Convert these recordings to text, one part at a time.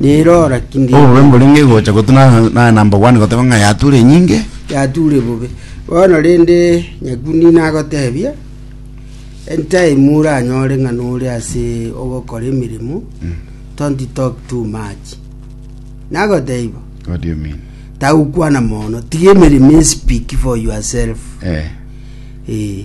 Nirora ki Obobe ngeire? mborenge gocha gotuna na- na- na mbogwane goteba ng'a yature enyinge. yature bobe bono rende nyakuni nagotebia entime oranyore ng'a nore ase ogokora emeremo don't talk too much nagotebia bo What do you mean? tagokwana mono tiga emeremo e speak for yourself Eh. eh.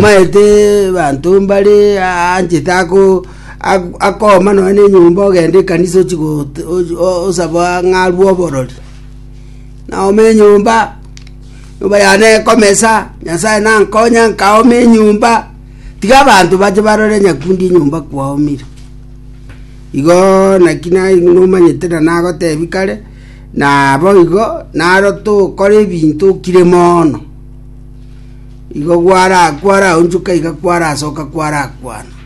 maete banto mbare anchete ako Ak- Akooma nonya nenyomba ogende ekanisa ochi gote- ochi- o- osaba ng'arue oborori naome enyomba nyomba yane ekomesa nyasaye nankonya nkaoma enyomba tiga abanto bache barore nyakundi enyomba kwaomire igo naki na- nomanyete na nagotebi kare nabo igo naro tokore ebinto okire moono igo gwara kwaraonchoka iga kwarasoka kwarakwana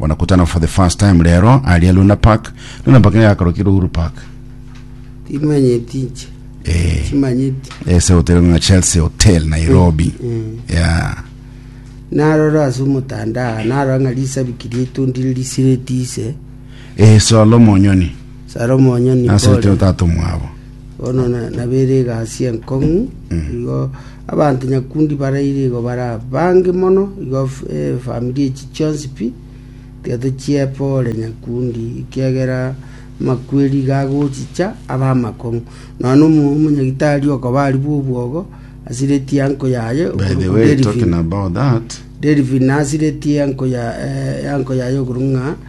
Banakutana for the first time rero aria Luna Park. Luna Park yakarokirwe Uhuru Park. timanyeti inche Eh. chimanyeti Ese hotel ng'a Chelsea Hotel Nairobi. Mm. Yeah. narora ase omotandao narora ng'a risabiki rietondire risireti ise Eh, Solo Monyoni. salomo onyoni Nasirete otatu mwabo. Bono nabere egasi enkong'u, igo abanto nyakundi baraire igo bare abange mono, igo efamiri echi chionsi pi tiato chiepwo ore nyakundi, ekiagera amakweri iga agochicha abe amakong'u. Nonya omo- omonyagitari okoba aria bw'obwogo, asiretie anko yaye By the okorokwa way, Delphine. talking about that, Delphine asiretie anko ya- eh, anko yaye okorokwa ng'a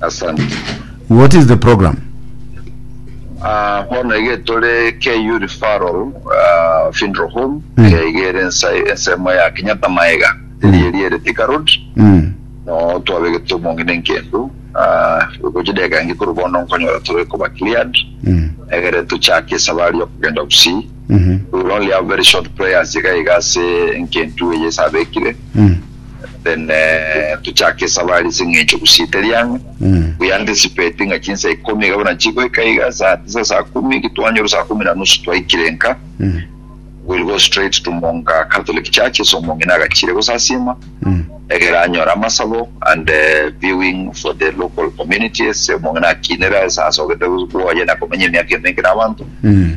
Asante. What is the program? Ah, bono iga tore KU referral ah, funeral home Mm. eh, iga ere ensa- ensemo ya Kenyatta Maega eri eri ere Thika Road Mm. no twabegete omong'ina enkendu ah, gochi deka ngi kore bono nkonyora tore koba cleared Mm. egere tochake esabari yo kogenda Gusii Mhm. we will only have very short prayers iga iga ase enkendu eye esabekire Mm. then eh, tochake esabari ase eng'encho gusite riang'a Mm. we anticipate ng'a chinsa ikomi iga buna chigoika iga saa tisa saa kumi gitwanyora saa kumi na nusu twaikire nka Mm. will go straight to monga catholic church ase omong'ina agachire gosasima Mm. egera anyora amasabo and eh, viewing for the local community ase omong'ina akinera ase asogete gwoye na komenya emiaka emenge na abanto Mm.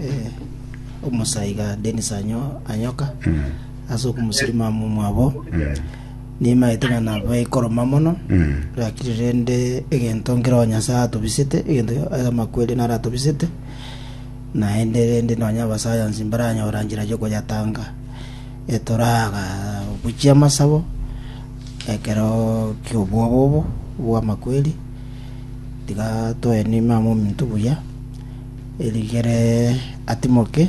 eh, omosaiga Dennis anyo anyoka ase okomosirima momwabo nimaete ng'a naba ikoroma mono lakini rende egento nkeroo nyasae atobisete egento aya amakweri naro atobisete naende rende nonya abasayansi mbaranyora njira yokoyatanga etoraga gochia amasabo ekero kiobwobobo bwamakweri tiga toe nima mominto buya Erigere atimoke,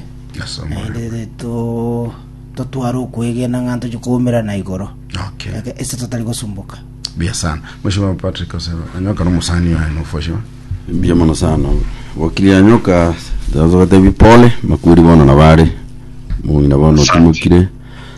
naende totware okwegena ng'a ntochie koumerana igoro Okay. eke- ase totari gosumboka. Buya sana. Mheshimiwa Patrick Osero, anyoka na musani oyo no fosho. Mbuya mono sana wakili anyoka ndaanza gotebi pole makweri bono nabare mong'ina bono otimokire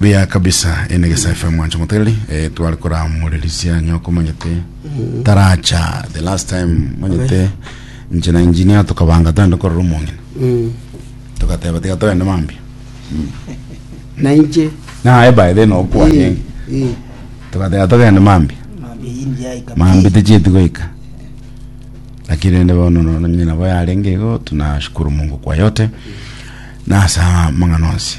Buya kabisa ene gesa FM mwancho moteri eh, twari koramorerisia nyoko manyete taracha the last time manyete nche na engineer tukabanga twende korora omong'ina Mm. tukateba tiga twende mambia na inche naye by then okwanye Eh, eh. tukateba togende mambia mambi ticheti goika lakini rende bono no- nyina bo yarenge igo tunashukuru mungu kwa yote nasa mang'ana onsi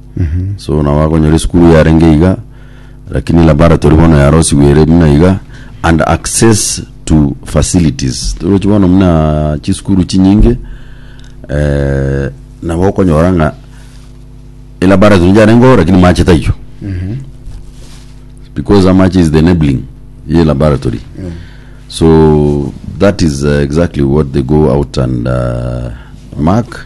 Mhm. so nabo akonyora esukuru yarenge iga lakini laboratory bono yarosigwe ere buna iga and access to facilities torochi bono muna chisukuru chinyinge eh, nabo okonyora ng'a elaboratory njarengeo lakini mache taiyo because amache is the enabling ye laboratory so that is uh, exactly what they go out and uh, mark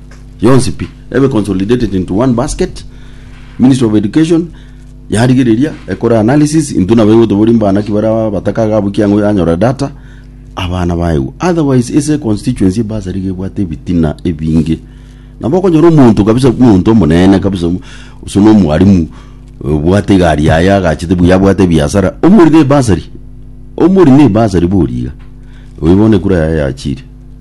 yonsi pi ebe consolidated into one basket ministry of education yarigereria ekore analysis into nabo egotobori mbana ki bara batakaga abwo kiang'o yanyora data abana baegwa otherwise ase constituency basari gebwate ebitina ebinge nabo okonyora omonto kabisa omonto omonene kabisa omo- ase na omwarimu obwate egari yaye agachete buya abwate ebiasara omorire ebasari omorine ebasari boria iga oyo bono ekura yaye yachire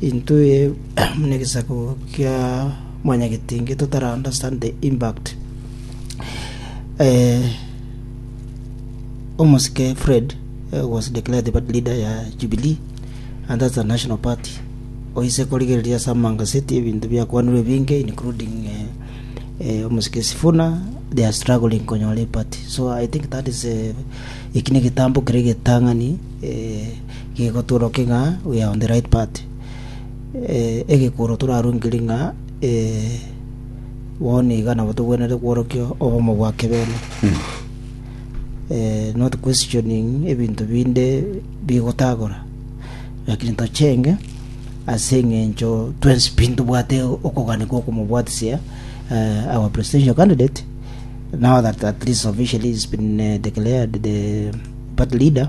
Intwe buna egesaku kia mwanyagetinge totara understand the impact. Eh, Omosike Fred eh, was declared the party leader ya Jubilee and that's a national party. Oise korigereria asa mangaseti ebinto biakwanirwe binge including eh, eh, Omosike Sifuna they are struggling konyora party. So I think that is eh, ekine getambo kere getang'ani eh, Gegotuorokia ng'a we are on the right path, egekworo torarungerie ng'a bono nigo nabo togwenerete kworokia obomo bwa keberwa, not questioning ebinto binde bigotagora, lakini tochenge ase eng'encho twensi pi ntobwate okogania gwa okomobwatisia our presidential candidate now that at least officially he's been declared the party leader.